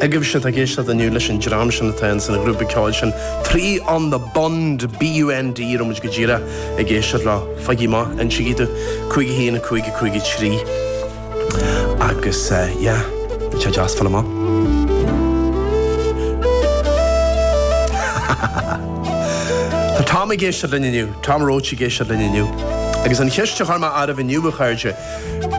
agaibhse atá ag éisteacht inniu leis an dream sin atá in san ghrúpa ceoil sin Three on the Bund, BUND, a raibh muid go díreach ag éisteacht leo, faigí amach, insígí dúinn, cúig a haon, cúig a cúig a trí. Agus yeah, bheadh sé deas fáil amach. Tá Tom ag éisteacht linn inniu, Tom Roach ag éisteacht linn inniu. Agus an cheist a chuir mé oraibh inniu a chairde,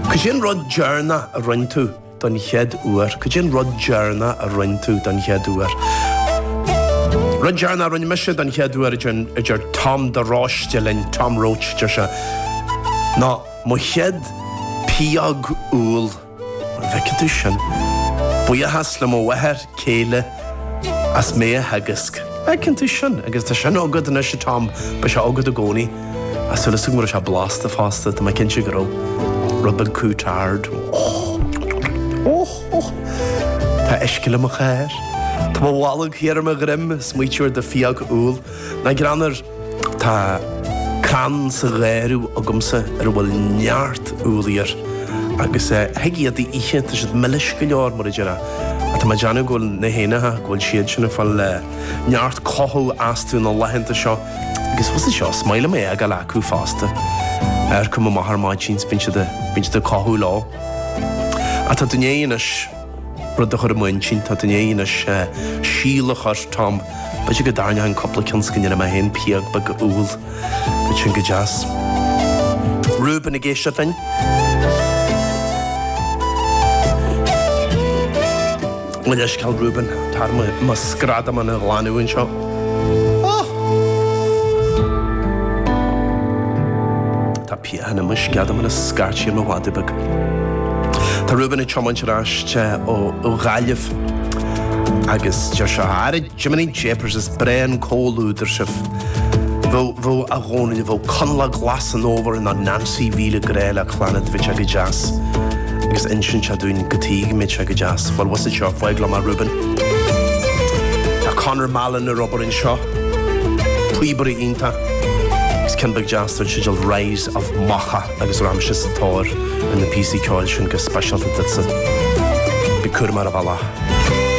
cad é an rud deireanach a rinne tú don chéad uair. Cad é an rud deireanach a rinne tú don chéad uair? Rud deireanach a rinne mise don chéad uair, a deir Tom de Róiste linn, Tom Roach deir sé, ná mo chéad phióg úll. An bhfeiceann tú sin? Buíochas le mo mháthair. chéile as mé a theagasc. Feiceann tú sin agus tá sin agat anois, a Tom, beidh sé agat i gcónaí. Tá súil agam go raibh sé blasta fosta, tá mé cinnte go raibh. Rud beag custard. Tá uisce le mo chár. Tá mo bholg thiar ar mo dhroim, ag smaoitiú ar do phióg úll. Ná greann air. Tá crann sa gharradh agamsa ar a bhfuil neart úllaí air, agus thig iad a ithe, tá siad milis go leor, mar a déarfá. Tá mé ag déanamh go bhfuil na héanacha, go bhfuil siad sin ag fáil neart cothú astu na laethanta seo, agus is é seo is maith liom é a fhágáil acu fosta. Amharcaim amach ar maidin is bíonn siad ag cothú leo. Ach tá tú i ndiaidh anois. rud a chur i m'intinn tá tú i ndiaidh anois síol a chur Tom b'fhéidir go dtarraingeoinn cúpla ceann is go ndéanfaidh mé féin pióg bheag úll bheadh sin go deas. Reuben ag éisteacht linn. Mo leithscéal Reuben tá orm mo sceadamán a ghlanadh anseo. pian i mo sceadamán ag scairtí ar mo mhadadh beag. Tá Reuben ag tiomáint ar ais ó Ghaillimh agus deir sé, Ara Jiminy Japers is breá an comhluadar sibh. Bheadh, bheadh a Dhónaill, bheadh Coinleach Glas an Fhómhair nó Nansaí mhíle grá le Clannad bheadh sé go deas agus insíonn sé dúinn cad tuige a mbeadh sé go deas. Bhuel bhfuil a fhios agat seo, fág liom é a Reuben. Tá Conor Mallon ar obair anseo. Píobaire iontach. Is ceann beag deas den teideal 'Rise of Macha' agus rachaidh mise sa tóir ar na píosaí ceoil sin go speisialta duitse. Bí cúramach ar an bhealach.